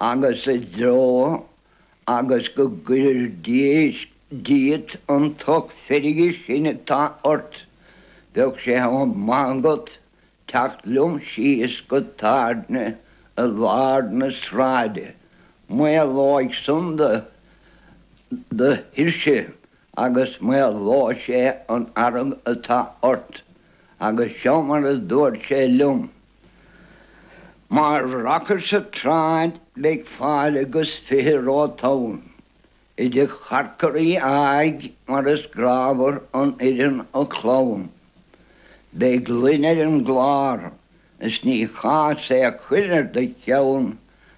agus i dtreó agus go gcuirir díot an tocht feirge sin atá ort, bheadh sé chomh maith agat teacht liom síos go tábhairne i lár na sráide. Maolóidh san do thuirse agus maolóidh sé an fhearg atá ort. Agus seo mar a dúirt sé liom. Mar racair sa tsráid beidh fáilte agus fiche romhat ann, i dtigh Chorcoraí áigh mar is grámhar an fhoireann a chlann. Beidh gloine ar an gclár is ní chás é a chur ar do cheann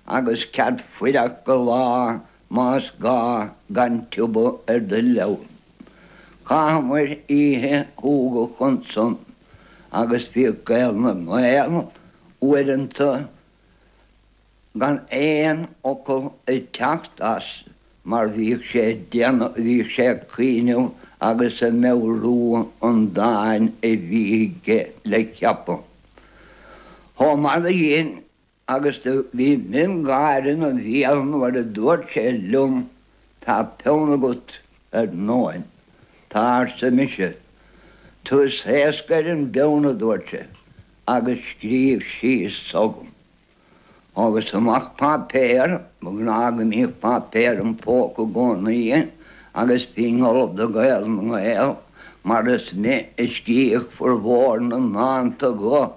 agus cead fuireach go lá más gá gan tiubadh ar do leann. Chaitheamair oíche shúgach ansan. agus bhíodh Gael na nGael uaireanta gan aon fhocal ag teacht as mar bhíodh sé do bhíodh sé ag cuimhneamh agus ag meabhrú an dáin a bhí aige le ceapadh. Chomh maith le sin. Agus do bhí miongháire ina bhéal nuair a dúirt sé liom, Tá peann agat, ar ndóin. Tá, arsa mise. Tú is éasca ar an bpeann, a dúirt sé, agus scríobh síos so dhom. Thógas amach páipéar, ba ghnáth go mbíodh páipéar im phóca i gcónaí agus bhínn ullamh do Ghael na nGael mar is mé a scríobh furmhór na ndánta go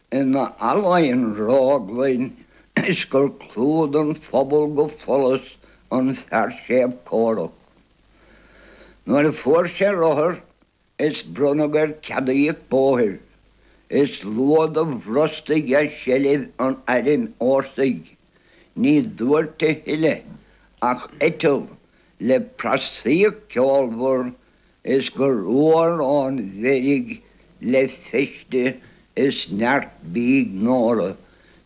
In allaín ráflaí is gur clú don phobal go follas an fear séimh córach. Nuair a fuair sé rothar is bronnadh air cead a íoc bóthair, is luath do bhrostaigh as seilbh an airm fhórsaigh. Ní dúirt a thuilleadh ach eiteall le prasaíocht ceolmhar Is gur fhuar an mheirg le feiste is neart bídh Nóra.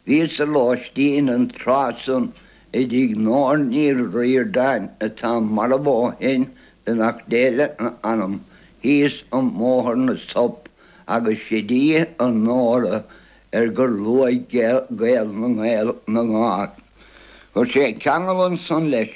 Bhíos-sa ar lóistín an tráth san i dtigh Nóra Ní Ríordáin atá marbh ó shin, beannacht Dé lena hanam, thíos i mBóthar na Sop, agus sid í an Nóra ar gur luaigh Gael na nGael. Chuir sé ceangal ansan leis.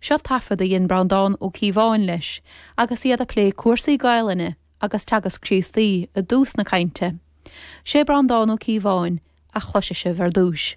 Seo taifead a dhein Breandán Ó Cíobháin leis agus iad ag plé cúrsaí Gaelainne agus Teagasc Críostaí i dtús na cainte. Sé Breandán Ó Cíobháin a chloisfidh sibh ar dtúis.